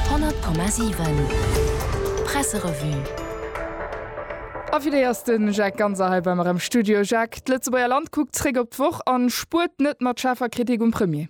100,7 Presserevue. A fir déi ass den Jacques Ganser hei bei mer am Studio. Jacques, d'Lëtzebuerger Land kuckt zréck op d'Woch an spuert net mat schaarfer Kritik um Premier.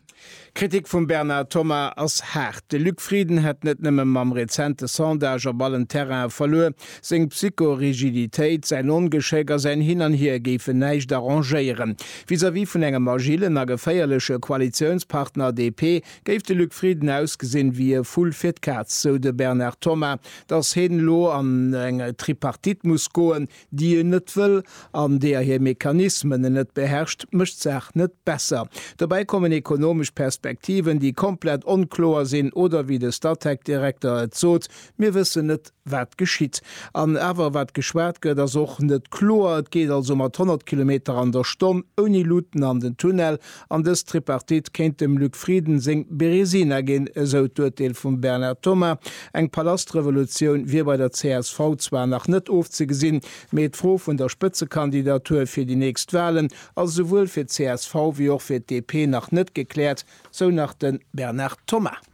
D'Kritik vum Bernard Thomas ass haart. De Luc Frieden hätt net nëmme mam rezente Sondage op allen Terrainen verluer. Seng Psycho-Rigiditéit, säin Ongeschéck a säin Hin an Hier géifen näischt arrangéieren. Vis-à-vis vun engem agillen a geféierleche Koalitiounspartner DP Géif de Luc Frieden ausgesinn ewéi e Vull fir d'Kaz, sou de Bernard Thomas, datt heen elo an eng Tripartite muss goen, déi en net wëll an deeër hir Mechanismen en net beherrscht, mécht d'Saach net besser. Dobäi kommen ekonomesch Perspektiven, déi komplett onkloer sinn oder, wéi de Statec-Direkter et sot, Mir wëssen net, wat geschitt an awer wat geschwat gëtt ass och net kloer. Et geet also mat 100 Kilometer an der Stonn ouni Luuten an den Tunnel an dës Tripartite kéint dem Luc Frieden seng Beresina ginn, esou d'Urteel vum Bernard Thomas. Eng Palastrevolutioun wier bei der csv zwar nach net ofzegesinn, mee d'Fro vun der Spëtzekandidatur fir déi nächst Walen ass esouwuel fir d'CSV wéi och fir d'DP nach net gekläert, sou nach de Bernard Thomas.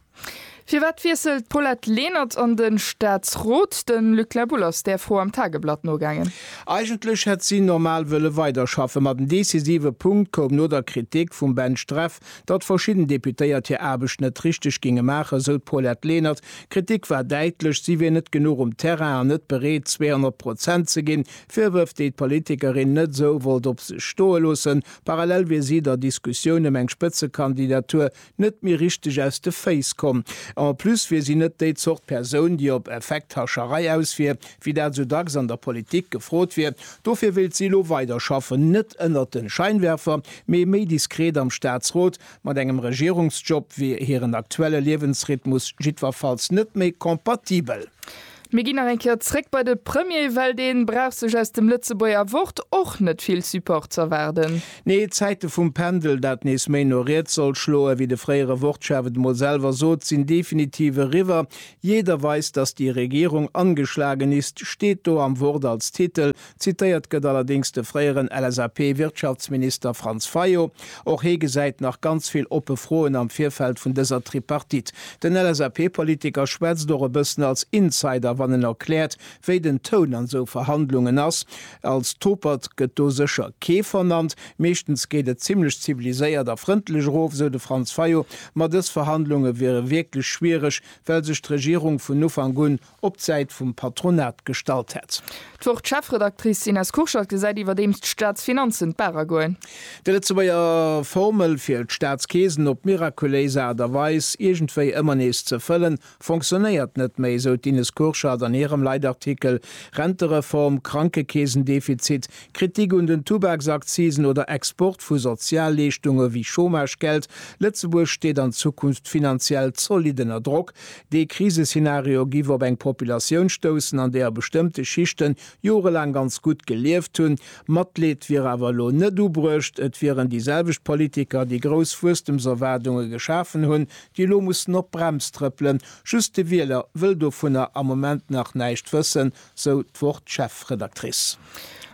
Firwat wiesselt d'Paulette Lenert an de Staatsrot? De Luc La Boulle ass där Fro am Tageblatt nogaangen. Eigentlech hätt si normal wëlle weiderschaffen, ma den decisive Punkt koum no der Kritik vum Ben Streff, datt verschidden Deputéiert hir Aarbecht net richteg géinge maachen, esou d'Paulette Lenert. D'Kritik war däitlech, si wier net genuch um Terrain an net bereet, 200 Prozent ze ginn. Virwërf, déi d'Politikerin net esou wollt op sech stoe loossen. Parallel wier si der Diskussioun ëm eng Spëtzekandidatur net méi richteg aus de Féiss komm. En plus wier si net déi Zort Persoun, déi op Effekthascherei aus wier, wéi dat esou dacks an der Politik gefrot wier. Dofir wéilt si elo weiderschaffen, net ënnert de Scheinwerfer, mee méi diskret am Staatsrot. Mat engem Regierungsjob wier hiren aktuelle Liewensrhythmus jiddwerfalls net méi compatibel. Mir ginn nach eng Kéier zréck bei de Premier, well dee brauch sech aus dem Lëtzebuerger Wort och net vill Support z'erwaarden. Nee, d'Zäite vum Pendel, dat nees méi no riets soll schloen, wéi de fréiere Wortschaf et emol selwer sot, sinn definitiv eriwwer. Jeder weiß, dass die Regierung angeschlagen ist steet do am Wort als Titel, Zitéiert gëtt allerdéngs de fréieren LSAP-Wirtschaftsminister Franz Fayot. Och hee gesäit nach ganz vill oppe Froen am Virfeld vun dëser Tripartite. Den LSAP-Politiker schwätzt och e bëssen als Insider, wann en erkläert, wéi den Toun an esou Verhandlungen ass. Als Topert gëtt do sécher kee vernannt. Meeschtens geet et zimmlech ziviliséiert a frëndlech erof, esou de Franz Fayot. Ma dës Verhandlunge wiere wierklech schwiereg, well sech d'Regierung vun Ufank un op d'Säit vum Patronat gestallt hätt. D'Wort-Chefredactrice Ines Kurschat gesäit iwwerdeems d'Staatsfinanzen d'Barer goen. Déi Lëtzebuerger Formel fir d'Staatskeesen op mirakuléis Aart a Weis iergendwéi ëmmer nees ze fëllen, fonctionnéiert net méi, esou d'Ines Kurschat an hirem Leitartikel Rentereform, Krankekeesendefizit, Kritik un den Tubaksaccisen oder Export vu Sozialleeschtunge wéi Chômagegeld. Lëtzebuerg steet an Zukunft finanziell zollidd ënner Drock, Dee Kriseszenario giff op eng Populatioun stoussen, an deeër bestëmmte Schichten jorelaang ganz gutt gelieft hunn. Matleed wier awer elo net ubruecht. Et wieren déi selwecht Politiker, déi grouss Wuesstemserwaardunge geschafen hunn, déi elo mussen op d'Brems trëppelen. Just de Wieler wëll dovunner am Moment nach näischt wëssen, sou d'Wort-Chefredactrice.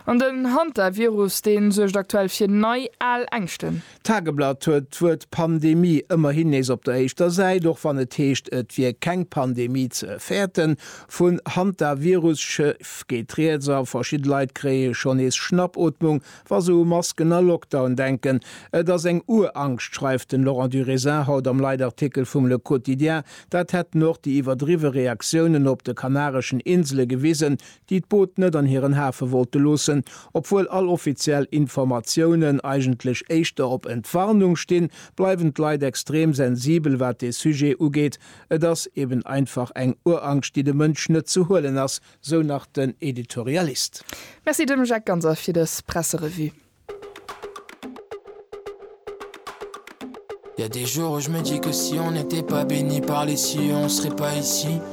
An den Hantavirus, dee suergt aktuell fir nei al Ängschten. D'Tageblatt huet d'Wuert Pandemie ëmmerhin nees op der éischter Säit, och wann et heescht, et wier keng Pandemie ze fäerten. Vun Hantavirus-Chief geet rieds a verschidde Leit kréie schonn nees Schnappootmung, wa se u Masken a Lockdown denken. Et ass eng Urangscht, schreift den Laurent Durisin haut am Leitartikel vum Le Quotidien. Dat hätten och déi iwwerdriwwe Reaktiounen op de kanareschen Insele gewisen, déi d'Boot net an hiren Hafe wollte loossen, obwuel all offiziell Informatiounen eigentlech éischter op Entwarnung stinn, bleiwen d'Leit extrem sensibel wat dee Sujet ugeet. Et ass eben einfach eng Urangscht déi de Mënsch net ze huelen ass, sou nach den Editorialist. Merci dem Jacques Ganser fir dës Presserevue.